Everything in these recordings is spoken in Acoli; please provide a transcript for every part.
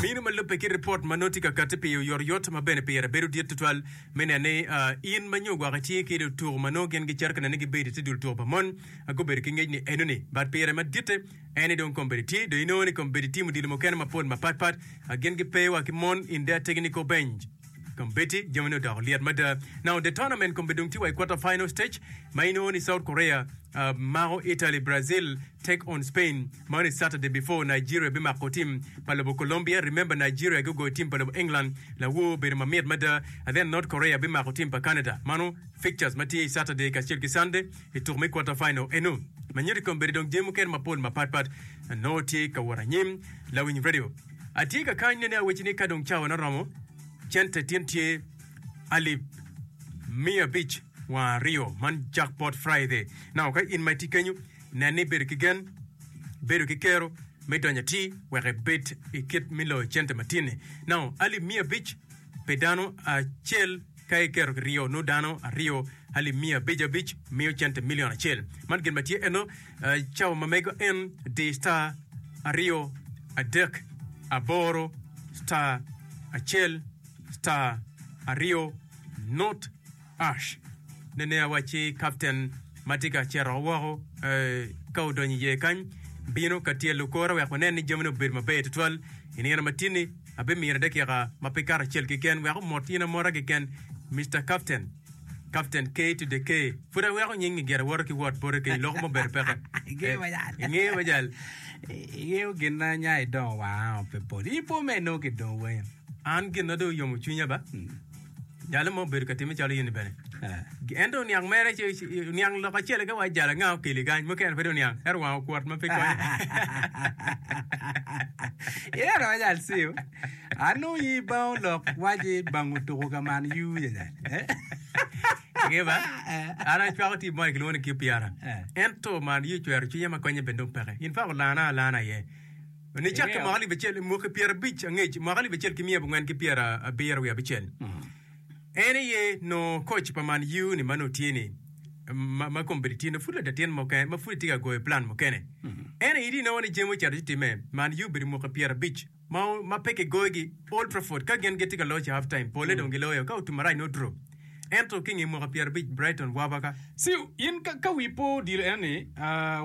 Minu ma lubbe ki ripot ma nongo tye ka katti pi oyotoyot ma bene pire bedo dit tutwal me neno ni ah, in ma nyo gwaka ci ki lutuko ma nongo gin gicito ka nene ni gibedo i te dul tuko pa mon ah, gubedo ki ngec ni enoni. But pire ma ditte en ni dong kombeddi tye, dong inongo ni kombeddi timo dilo mukene mapol mapatpat ah, gin gipe wa ki mon in de ategi ni kobenj kombeddi jami ni odoko lyet mada. Now the tournament kombeddi dong tye wa i quarter final stage ma inongo ni South Korea Mako Italy, Brazil take on Spain, Man is Saturday before Nigeria bimako team pa lobo Colombia, remember Nigeria gugoyo team pa lobo England lawoo obedo mamit mada, and then North Korea bimako team pa Canada mano fixtures matye i Saturday kacel ki Sunday i tuko me quarter final eno. Manyodi kong bedi dong jami mukene mapol mapat pat nongo tye ka wot anyim lawiny radio atye ka kany nene aweci ni kadong cawa ne oromo cente tin tye alip miya abic. Wang aryo, man Jackpot Friday. Nongo ka in ma itye kenyu, nen ni ibedo ki gen, bedo ki kero me donyo atir wek ibed i kit me loyo cente matinni. Nongo alip miya abic pi dano acel ka iketo ki ryo nongo dano aryo alip miya abic abic miyo cente milion acel. Man gin ma tye eno, eh, cawa ma mego en di star aryo adek aboro star acel star aryo Not Ash Nenea wacci kapten ma tye ka cito woko ka odonyo i iye kany bino ka tyelo kore wek wanen ni jamine obedo maber tutwal i nino matini. Abimine dakika ma pe kato acel keken wek omot in amota keken, Mister Kapten. Kapten K to the K. Pud aweko nyingi gire woto ki wot bote kenyo loko mo bedo peke. Ingeyo majal. Ingeyo majal. Ingeyo gin ma anya idongo wanga pe pol. Ipo me eno ki dong wenyo. An gin ma dong oyomo cwinya ba. Jalo mo obedo ka timme calo in bene. Eh. En dong oniang mere ci oniang lok acel ka wa jalo anga okeli kany mukene pe dong oniang ero wang okwot ma pe konye. Ina ro jal siu. Anu yi bao lok waji bang utuku ka man yu janya. Eh. Nge ba? Eh. An acwako ti mo kilwongo ni QPR. Eh. Ento man yi cwero cwinya ma konye bene dong peke. In fa ulana alana ye. Nongo icak ki mwaka alip acel ki mwaki pyerabic angec, mwaka alip acel ki miya abongwen ki pyerabiro wiye abicel. En aye nongo koc pa Man U ni ma nongo tye ni ma, ma kome bedo tino, pud ladatin muken ma pud etye ka goyo plan mukene. Ento aye di nongo ni jami ocito ci timme. Man U obedo mwaki pyerabic ma, ma pe kigoyogi Old Trafford ka gin gitye ka loc i half time, pole dong giloyo ka otum marac nongo two. ento ki nge mwaka pyerabic Brighton wabaka. See in ka wi pe odilo enoni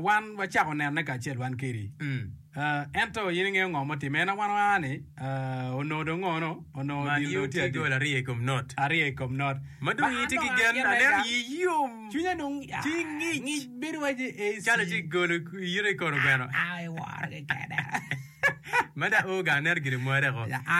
wan wacako nene kacel wan kedi ento in ingeyo ngo ma otime ena wan waa ni onongo dong ngo no onongo Man odilo u tye adi gol aryo ikom not. aryo ikom not Ma dong ii tye ki gen aneno lega ii yom cwinya dong ci ngic ngic bedo waci AC calo ci golo yito ikor ogweno. Aye woro kekene. Mada ooga aneno gin omware ko.